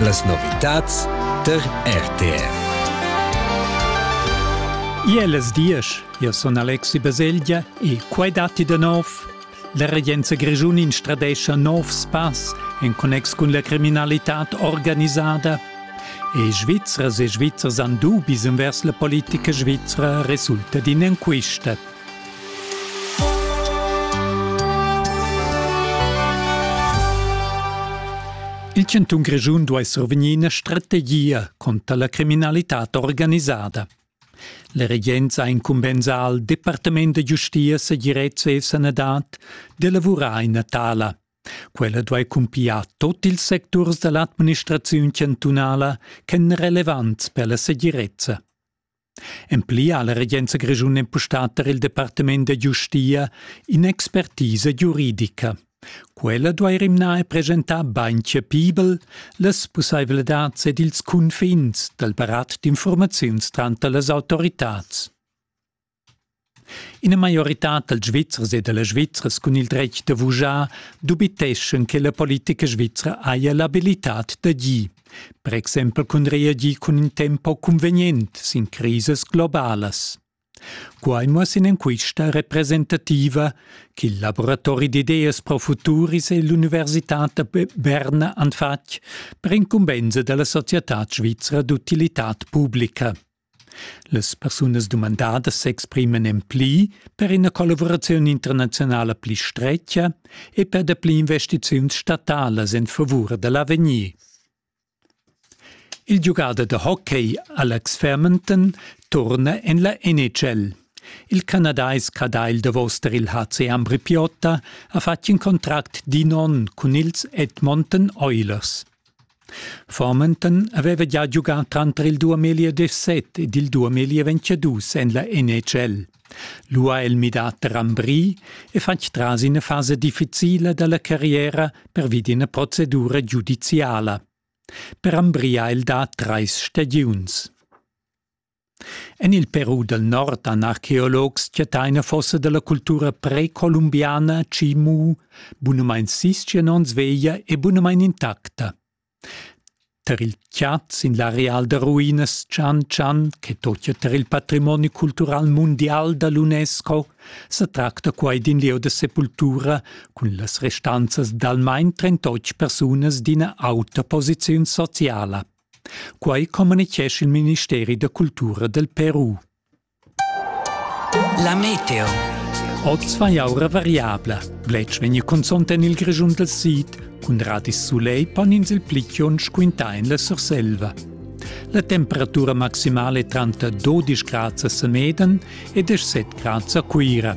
Las novitads tar RTR. Iel es diesch, io sun Alexi Baselgia e quai datti da nov. La regenza grischun instradescha nov spass en connex cun la criminalità organisada. E Svizzers e Svizzers han dubis envers la politica svizra resulta d'in enquista. Il chantun Grischun duai survegnir ina strategia contra la criminalitad organisada. La regenza ha incumbensà al Departament da giustia, segirezza e sanadad d'elavurar ina tala. Quella duai cumpiar tot ils secturs da l'administraziun chantunala ch'èn relevants per la segirezza. En pli ha la regenza grischuna empustà tar il departament da giustia in'expertisa giuridica. Quella duai rimnar e presentar bain chapibel las pussaivladads ed ils cunfins dal barat d'infurmaziuns tranter las autoritads. Ina maioritad dals Svizzers e da las Svizzras cun il dretg da vuschar dubiteschan che la politica svizra haja l'abilitad d'agir, per exempel cun reagir cun in tempo cunvegnent sin crisas globalas. Quai muossa in'enquista representativa ch'il laboratori d'ideas pro futuris e l'Università da Berna han fatg per incumbensa dalla società svizra d'utilitad publica. Las persunas dumandadas s'expriman en pli per ina collavuraziun internaziunala pli stretga e per dapli investiziuns statalas en favur da l'avegnir. Il giugader da hockey Alex Fairmonton turna en la NHL. Il canadais cadagl davos tar il HC Ambripiotta ha fatg in contract d'in onn cun ils Edmonton Oilers. Farmenton haveva gia giugà tranter il duamilli e dezset ed il duamilli e ventschedus en la NHL. Lu ha el midà Rambry e fatg tras ina fasa difficila dalla carriera pervi d'ina procedura giudiziala. Per Rambry ha el dà treis stagiuns. En il Peru dal nord han archeologs chattà ina fossa da la cultura precolumbiana Chimu, bunamain sis-tschien onns veglia e bunamain intacta. Tar il chat sin l'areal da ruinas Chan Chan, che totia tar il patrimoni cultural mundial da l'UNESCO, sa tracta quai d'in lieu da sepultura cun las restanzas d'almain trentotg persunas d'ina auta posiziun sociala. Quai communitgescha il ministeri da cultura del Peru. La meteo. Oz fa jaura variabla. Bletsch vegni consont en il Grischun del Sid, cun radis soleil pon ins il pli chionsch quintà en la Surselva. La temperatura maximale è tranter 12 grads a Semeden e 17 grads a Cuira.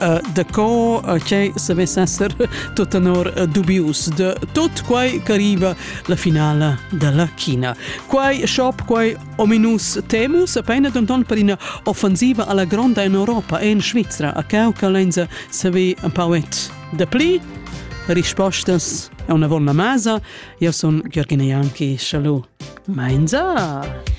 Uh, daco uh, che se vess esser tot tenor uh, dubius de tot quai che arriva la finale della China. Quai shop, quai ominus temus, appena denton per una offensiva alla gronda in Europa e in Svizzera, a cau che lenza se ve un pauet de pli. Rispostas è una volna masa. Io sono Gheorghina Janki. Shalom. Mainza!